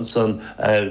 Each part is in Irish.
ansan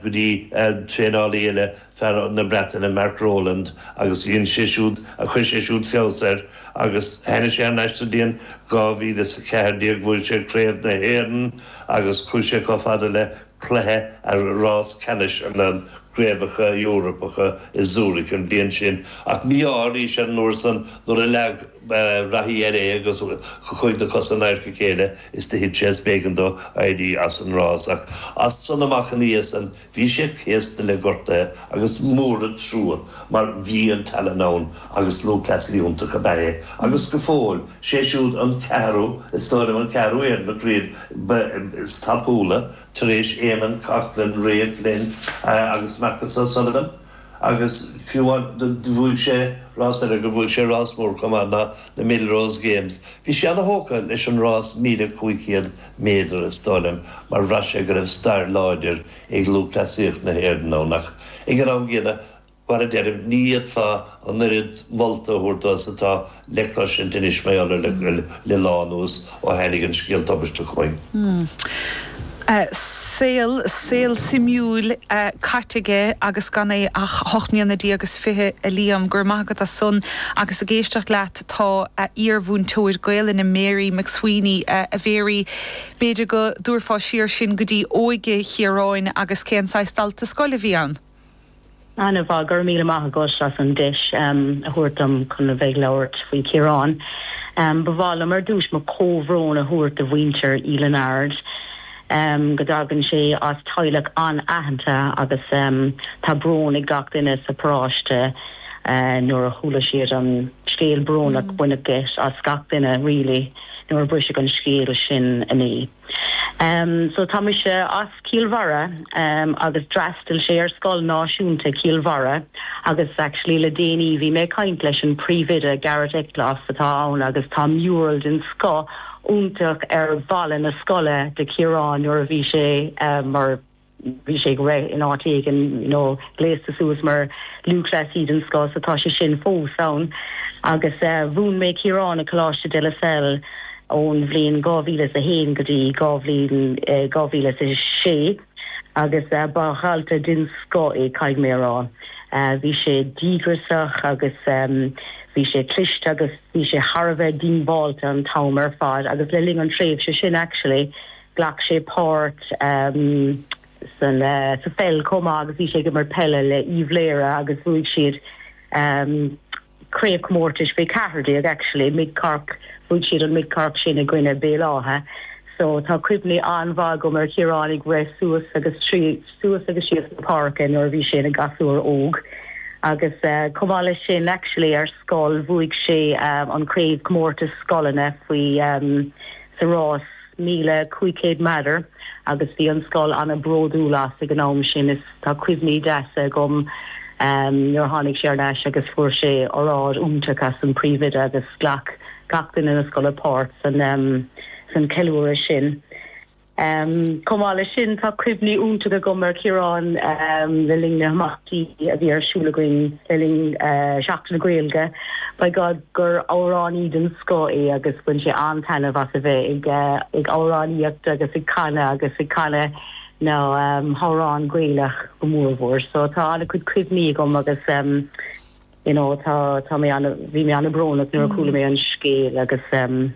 go dtí traenálaí eile, fear na Breataine, Mark Rowland, agus dhein sé siúd, chuir sé siúd feabhas air agus tháinig sé thar n-ais. Sa bhliain 2014 bhuaigh sé craobh na hÉireann agus chuaigh sé chomh fada le cluiche a rás ceannais na gcraobhacha Eorpacha i Zurich an bhliain sin ach mí-ádh arís air an uair san nuair a leag reathaí eile é agus chuaigh na cosa in adharca a chéile is do thit sé is b'éigean dó éirí as an rás. Ach as san amach ina dhiaidh san bhí sé céasta le gortaithe agus mór an trua mar bhí an tallann ann agus lúthchleasaí iontach ab ea é agus go fóill sé siúd an ceathrú is dóigh liom an ceathrú Éireannach riamh is tapúla tar éis Éamonn Coghlan, Ray Flynn agus Marcus O'Sullivan. Agus fiú amháin do bhuaigh sé rás eile, do bhuaigh sé rás mór chomh maith ná na Millrose Games, bhí sé ana thógtha leis an rás 1500 méadar is dóigh liom mar bhraith sé go raibh stair láidir ag lúthchleasaíocht na hÉireann ann ach ag an am gcéanna mar a deirim ní fhéadfá an oiread molta a thabhairt dó is atá le cloisint anois mar gheall air le lá anuas ó thainig an scéal tubaisteach chugainn. Saol, saol suimiúil caite aige agus gan é ach a hocht mbliana déag agus fiche a Liam. Go raibh maith agat as san. Agus ag éisteacht leat tá a iarmhúinteoir Gaolainne Mary McSweeney, a Mhary b'fhéidir go dtabharfá siar sinn go dtí óige Chiaráin agus cén saghas dalta scoile a bhí ann? An-mhaith. Go raibh míle maith agat as an deis a thabhairt dom chun a bheith ag labhairt faoi Chiarán. Ba mhaith liom ar dtúis mo chomhbhrón a thabhairt do mhuintir Uí Lionáird. Go dtagann sé as teaghlach an-aitheanta agus tá brón ag gach duine sa bparáiste nuair a chuala siad an scéal brónach. Baineadh geit as gach duine really nuair a briseadh an scéal sin inné. Em so tá mise as Cill Bharra em agus d'fhreastail sé ar scoil náisiúnta Chill Bharra agus actually le déanaí bhí mé ag caint leis an príomhoide Garret Eccles atá ann agus tá mural den scoth iontach ar bhalla na scoile de Chiarán nuair a bhí sé em mar bhí sé ag rith in áit éigin you know gléasta suas mar lúthchleasaí den scoth so tá sé sin fós ann agus eh mhúin mé Ciarán ag Coláiste De La Salle ón bhliain dhá mhíle is a haon go dtí dhá bhliain eh dhá mhíle is a sé agus eh ba dhalta den scoth é caithfidh mé a rá. Eh bhí sé díograsach agus ehm bhí sé cliste agus bhí sé thar a bheith díongbháilte an t-am ar fad agus le linn an tréimhse sin actually Ghlac sé páirt sa pheil chomh maith agus bhí sé ag imirt peile le hUíbh Laoghaire agus bhuaigh siad craobhchomórtais faoi 14 actually Mid Cork bhuaigh siad an Mid Cork sin i gcoinne Béal Átha so tá cuimhní an-mhaith agam ar Chiarán ag rith suas agus suas agus síos sa pháirc nuair a bhí sé ina gasúr óg agus chomh maith leis sin actually ar scoil bhuaigh sé an craobhchomórtas scoileanna faoi sa rás 1500 meadar agus bhí an scoil an-bhródúil as ag an am sin is tá cuimhní deasa agam nuair a tháinig sé ar ais agus fuair sé óráid iontach ón príomhoide agus ghlac gach duine na scoile páirt san ceiliúradh sin. Chomh maith leis sin tá cuimhní iontach agam ar Chiarán le linn na n-imeachtaí a bhí ar siúl againn le linn Sheachtain na Gaeilge. By God. gur amhránaí den scoth é agus bhain sé an-taitneamh as a bheith ag amhránaíocht agus ag canadh agus ag canadh na n-amhrán Gaelach go mór mhór. So tá an-chuid cuimhní agam agus you know tá tá bhí mé an-bhrónach nuair a chuala mé an scéal agus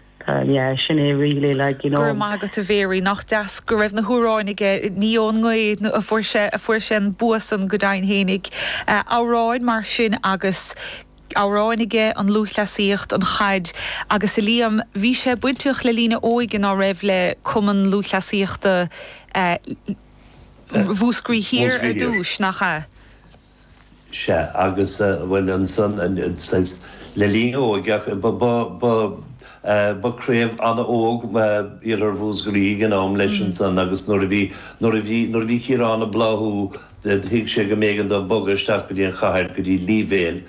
yeah sin é really like you know. Go raibh maith agat a Mhary, nach deas go raibh na hamhráin aige, ní ón ngaoth a fuair sé an bua san go deimhin féinig. Amhráin mar sin agus. amhráin aige, an lúthchleasaíocht, an chaid agus a Liam, bhí sé bainteach le linn a óige ná raibh le Cumann Lúthchleasaíochta Mhúscraí Thiar ar dtús, nach ea? sé agus bhuel ansan le linn a óige ba craobh an-óg Iarthar Mhúscraí ag an am leis ansan agus nuair a bhí Ciarán ag bláthú Thuig sé go mb'éigean dó bogadh isteach go dtí an chathair, go dtí Leevale,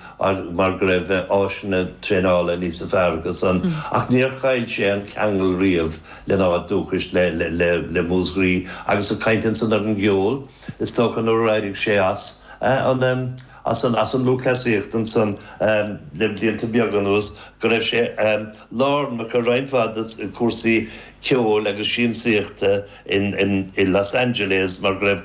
mar go raibh áiseanna traenála níosa fearr acu san, ach níor chaill sé an ceangal riamh lena áit dúchais, le Músgraí, agus ag caint ansan ar an gceol, is dócha nuair a d'éirigh sé as an, as an lúthchleasaíocht ansan le blianta beaga anuas, go raibh sé lárnach i roinnt mhaith de chúrsaí ceoil agus siamsaíochta in, in Los Angeles mar go raibh,